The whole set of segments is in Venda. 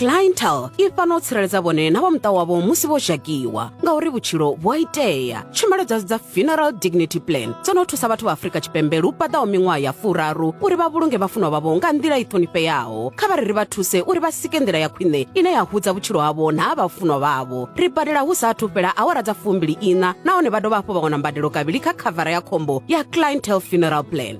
clientel i fana u tsireledza vhone na vha muṱa wavho musi vho dzhakiwa ngauri vhutshilo vhu a itea tshumelo dza dza funeral dignity plan dzo no thusa vhathu vha afurika tshipembe lu paḓaho miṅwaha ya furaru uri vha vhulunge vhafunwa vhavho nga nḓila i ṱhonifheaho kha vha ri ri vha thuse uri vha sike nḓila ya khwine ine ya hudza vhutshilo havho na ha vhafunwa vhavho ri badela hu sa athu fhela awara dza fumbili ina nahone vha dovha hafhu vha wana mbadelo kavhili kha khavara ya khombo ya clientel funeral plan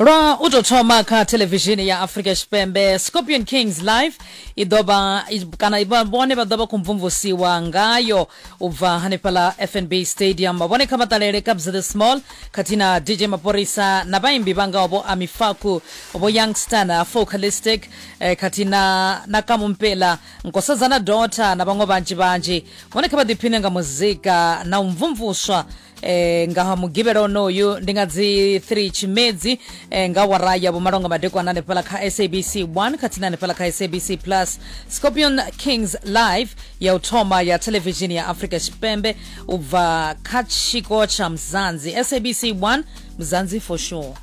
lwa u tou thoma kha thelevishini ya africa tshipembe scorpion kings live i ḓovha i- kana i- vha- vhone vha ḓo vha khou mvumvusiwa ngayo u bva hanefhala fnb stadium vhone kha vha ṱalele kabs the small khathihi na dj maporisa na vhaimbi vha ngaho vho amifaku vho youngstar na focalistic eh, khathihi na na kamumpela nkosazana dota na vhaṅwe vhanzhi vhanzhi vhone kha vha ḓiphine nga muzika na u mvumvuswa e, nga mugivhela onoyu ndi nga dzi 3 tshimedzi e, nga wara ya vhumalonga madekwana hanefhala kha sabc 1 khathihi na hanefhala kha sabc plus scorpion kings live ya u thoma ya televishini ya afrika tshipembe u bva kha tshiko tsha mzanzi sabc 1 mzanzi for sure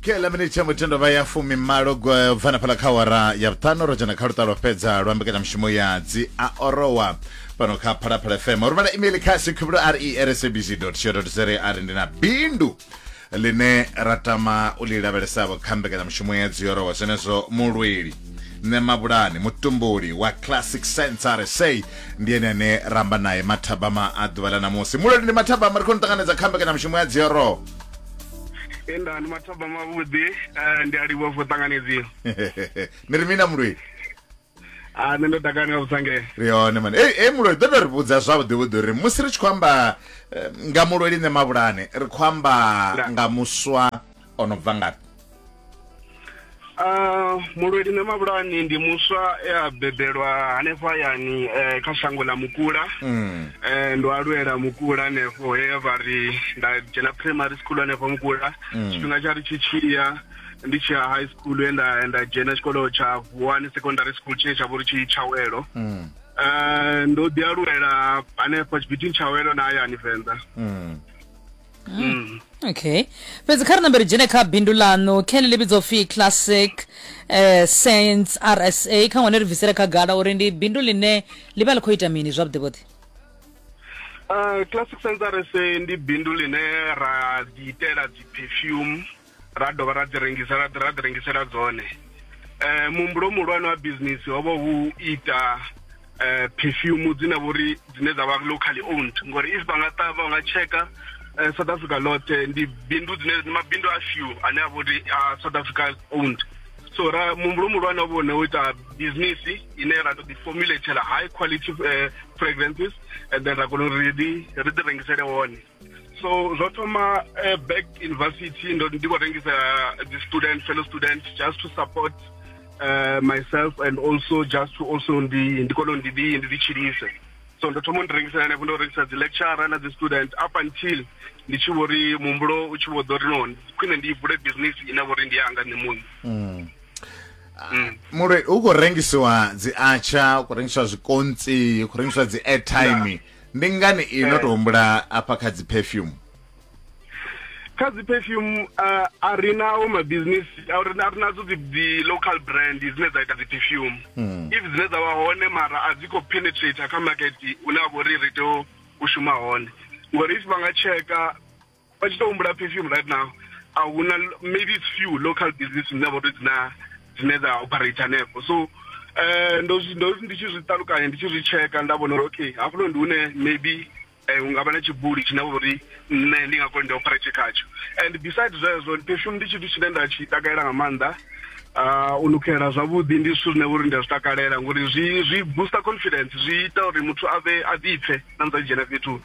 kela miniti tsha mutendo vha ya fumi malo bvana phala kha wara ya vhuṱanu ro dzhena kha luṱa lwa fhedza lwa mbekanyamushumo ya dzi a orowa fhano kha phalaphala fm uri vhala email kha sekhubro r e r sabc co za a ri ndi na bindu line ra tama u li lavhelesavho kha mbekanyamushumo ya dziyorowa zwenezwo mulweli nṋe mabulani mutumbuli wa classic sense rsa ndi ene ane ramba naye mathabama a ḓuvha ḽa ṋamusi mulweli ndi mathabama ri khou ni ṱanganedza kha mbekanyamushumo ya dziyorowa enda ndi mathabama vhuḓi eh, ndi a livhuwa for ṱanganedziwa ni ri mina mulweli a ah, nṋe ndo takala nga vhusange ri hone mani ei ei mulweli ḓo to ri vhudza zwavhuḓi vhuḓi uri musi ri tshi khou amba eh, nga mulweli nṋe mavhulane ri khou amba nga muswa o no bva ngafhi Uh, mulweli na mabulani ndi muswa e a bebelwa hanefho hayani eh, kha shango ḽa mukula mm. eh, ndo alwela mukula hanefho he vha ri nda dzhena primary school hanefho mukula mm. tshifhinga tsha ri tshi tshiya ndi tshi ya high school ye nda nda dzhena tshikolo tsha vuwani secondary school tshine tsha vha uri tshi tshawelo Mm. Eh, ndo ḓi aluwela hanefho tshibitini tshawelo na hayani venḓa Mm. Mm. okay fhedzi kha ri nambe ri dzhene kha bindu ḽaṋu kene ḽi vhidzwa upfi classic eh, science rsa kha ngwane ri bvisele khagala uri ndi bindu ḽine ḽi vha ḽi khou ita mini zwavhuḓivhuḓi Eh, classic sensors ndi bindu line ra ḓi itela dzi perfume ra dovha ra dzi rengisela ra dzi rengisela dzone eh muhumbulo muhulwane wa business ho vha hu ita eh perfume dzine vhori dzine dza vha locally owned ngori if vha nga ṱavha nga checka eh, south africa lote ndi bindu dzine ndi mabindu a few ane a vhori a south africa owned so ra muhumbulo muhulwane wa vhone u ita business ine ra to ḓi formulatela high quality eh, fragrances and then ra kona uri ri ḓi ri ḓi rengisele wone so zwo thoma uh, back university ndo ndi khou rengisa the student fellow student just to support uh, myself and also just to also ndi ndi kone ndi ndi ndi tshilise so ndo thoma ndi rengisela hanefho ndo rengisa dzi lecturer na dzi student up until ndi tshi vho ri muhumbulo u tshi vho ḓo ri no khwine ndi vule business ine vho ri ndi yanga nṋe muṋe mm. mm. muloi u khou rengisiwa dzi atsha u khou rengisiwa zwikontsi u khou rengisiwa dzi airtime yeah. ndi ngani iyi no to humbula afha kha dzi perfume kha dzi perfume uh, a ri nawo mabusiness a ri nadzo dzi local brand dzine dza ita dzi perfume hmm. if dzine dza vha hone mara a dzi khou penetrate kha market une a vho ri ri tea u shuma hone ngori if vha nga tsheka vha tshi to humbula perfume right now a huna maybe it's few local business dzine vha tou dzina dzine dza operate hanefho so eh ndo zwi- ndo ndi tshi zwi ṱalukanya ndi tshi zwi tsheka nda vhona uri okay hafhuno ndi hune maybe eh hu nga vha na tshibuli tshine vha uri nṋe ndi nga kona ndi operate khatsho and besides zwezwo perfume ndi tshithu tshine nda tshi takalela nga maanḓa Ah, u nukhelela zwavhuḓi ndi zwithu zwine vhori ndi a zwi takalela ngori zwi zwi booster confidence zwi ita uri muthu a vhe a ḓipfe na musi a tshi dzhena fhethu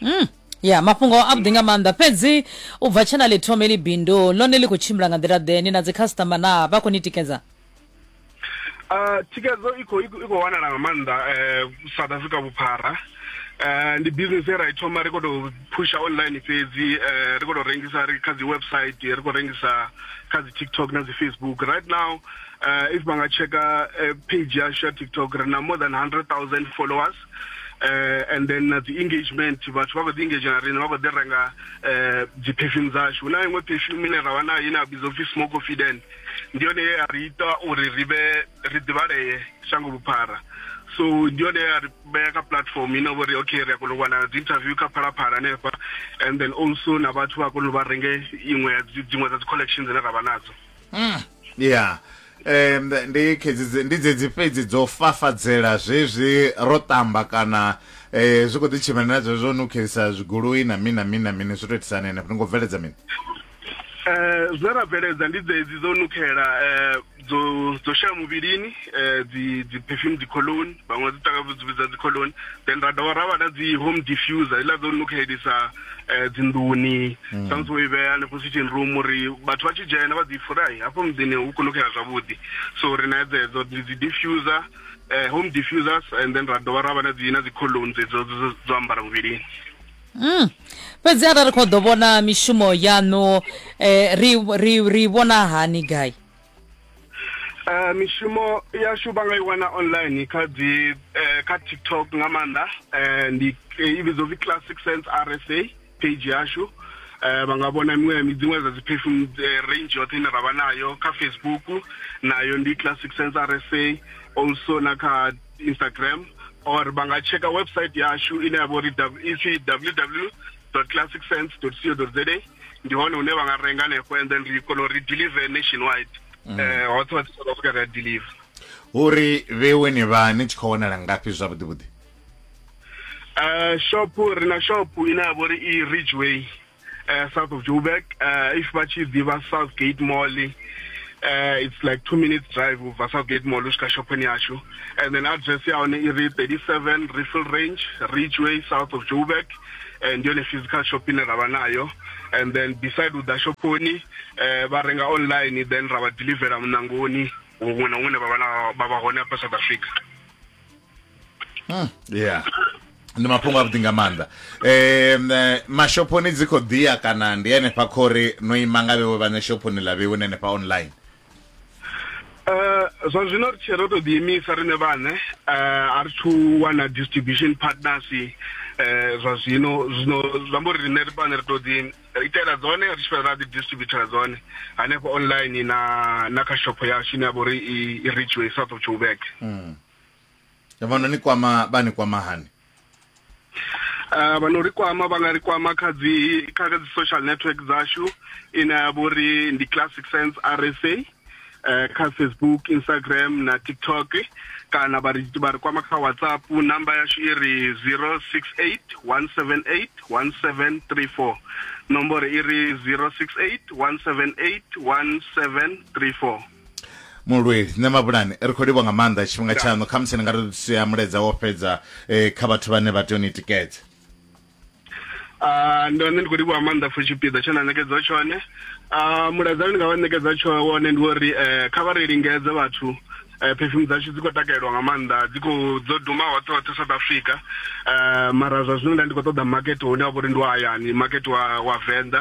mm. ya mafhungo avhuḓi nga maanḓa fhedzi u bva tshena ḽi thome ḽi bindu ḽone ḽi khou tshimbila nga nḓila ḓe ni na dzi customer na vha khou ni tikedza uh, thikedzo i khou wanala nga maanḓa eh, south africa vhuphara Eh, ndi business ye ra i thoma ri khou tou pusha online fhedzi eh, ri khou tou rengisa ri kha dzi website ri khou rengisa kha dzi tiktok na dzi facebook right now uh, if vha nga checka page yashu ya tiktok ri na more than 100 000 followers eh and then na dzi engagement vhathu vha kho ḓi engage na riṋe vha kho ḓi renga eh dzi perfume dzashu hu na iṅwe perfume ine ra vha nayo ine ya vhidzwa upfi small confident ndi yone ye ya ri ita uri ri vhe ri ḓivhalee shango vhuphara so ndi yone ya ri vhea kha platform ine vho ri okay ri a kona u wana dzi interview kha phalaphala hanefha and then also na vhathu vha kona u vha renge iṅwe ya dzi- dziṅwe dza dzi collection dzine ra vha nadzo mm. yeah um ndi khedzi ndi dzedzi fhedzi dzo fafadzela zwezwi ro tamba kana eh zwi kho ḓi tshimana na zwezwo no khelisa zwigoloi na mini na mini na mini zwi to itisana ene fhano ngo bveledza mini eh zwe ra bveledza ndi dzedzi dzo nukhela eh dzo dzo shaya muvhilini eh dzi dzi perfume dzi cologne vhaṅwe dzi takavu dzi vhidza dzi cologne then ra dovha ra vha na dzi home diffuser ila dzo nukhelisa eh, dzinḓuni mm. samusi wo i vhea hanefho switching room uri vhathu vha tshi dzhena vha ḓi furahi hafho muḓini hu kunukela zwavhuḓi so ri na dzedzo dzi diffuser eh, home diffusers and then ra dovha ra vha na dzi na dzi colon dzedzo dzo ambara muvhilini Mm. fhedzi arali ri khou ḓo vhona mishumo yaṋu eh, ri, ri, ri vhona hani gai Uh, mishumo yashu vha nga i wana online kha dzi uh, kha tiktok nga maanḓa uh, ndi i vhidzwa upfi classic sense rsa page yashu uh, vha nga vhona miṅwe dziṅwe dza dzi perfume uh, range yoṱhe ine ra vha nayo kha facebook nayo ndi classic sense rsa also na kha instagram or vha nga checka website yashu ine ya vha uri ipfi www classicsense.co.za ndi hone hune vha nga renga hanefho and then ri kona uri deliver nationwide mm. eh hoṱhe hoṱhe south africa ri a deliver uri vhewe ni vha ni tshi khou wanala ngafhi zwavhuḓi vhuḓi eh shop ri na shop ine ya vhori i ridgeway eh south of joburg eh if vha tshi ḓivha south gate mall uh, it's like two minutes drive ubva southgate mall usvika shophoni yashu and then address yaone iri 37 riffle range ridgeway south of joburg eh, ndi yone physical shop ine ra vha nayo and then beside u ḓa shophoni eh, vha renga online then ra vha delivera munangoni huṅwe na huṅwe ne vha vha na- vha vha hone hafha south africa yeah ndi mafhungo avhuḓi nga maanḓa um mashophoni dzi khou ḓiya kana ndi henefha khori no ima nga vhewe vhane shophoni ḽa vhewe na henefha online Uh, zwa zwino ri tshe ro to ḓiimisa riṋe vhaṋe uh, a ri thu wana distribution partners uh, zwa zwino zwino zwi amba uri riṋe ri vhaṋe ri to ḓi itela dzone ri tshi fhedza ra ḓi distributela dzone hanefho online na na kha shopho yashu ine ya vha uri i reachway south of joburg mm. vhona ni kwama vha ni kwama hani Uh, vha no ri kwama vha nga ri kwama kha dzi kha dzi social network dzashu ine ya vha uri ndi classic sense rsa uh, eh, kha facebook instagram na tiktok kana vha ri vha ri kwama kha whatsapp namba yashu i ri 068 178 1734 nomboro i ri 068 178 1734 mulweli nṋe mabulani ri khou livha nga maanḓa tshifhinga tshaṋu kha musi ni nga ri sia mulaedza wo fhedza um kha vhathu vhane vha tea u ni tikedza ah, ndo nṋe ndi khou livhuwa maanḓa for tshipiḓa tshe na ṋekedza tshone ah, mulaedza ndi nga vha ṋekedza tsho wone ndi uri eh, kha vha ri lingedze vhathu eh, perfume dzashu dzi khou takalelwa nga maanḓa dzi khou dzo duma hoṱhe hoṱhe south africa um mara zwa zwino nda ndi khou ṱoḓa makete hune wa vha uri ndi wa hayani makete wa wa venḓa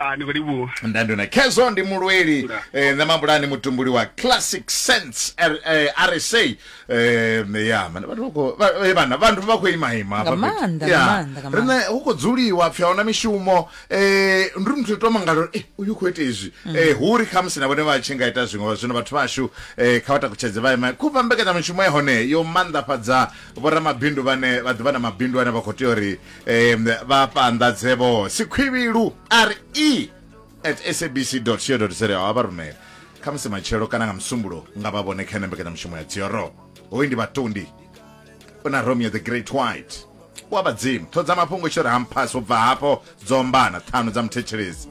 Ah, ni khou livhuwa ndandona khezwo ndi mulweli Nda. eh, nṋe mabulani mutumbuli wa classic sense R, eh, rsa eh, ya mane vhathu vha khou- vha- eh, vhana vhathu vha khou imaima hafha Nga fhethu. maanḓa, Ya. nga maanḓa, nga riṋe hu khou dzuliwa pfi ahuna mishumo eh, ndi muthu to mangala uri eh, uyu khou ita izwi Mm. eh, hu ri khamusi na vhone vha tshi nga ita zwiṅwe zwino vhathu vhashu eh, kha vha takutshedze vha ima khuvha mbekanyamishumo ya hone yo maanḓafhadza vhoramabindu vhane vha ḓivha na mabindu ane vha khou tea uri um vhafhanḓadze vho sikhwivhilu re at sabc co za a vha rumela kha musi matshelo kana nga musumbulo nga vha vhone kha ene mbekanyamushumo ya dzioro hoyu ndi vhatundi u na romeo the great white wa vhadzimu ṱhodza mafhungo tshi ri hampasi u bva hafho dzombana ṱhanu dza muthetshelezi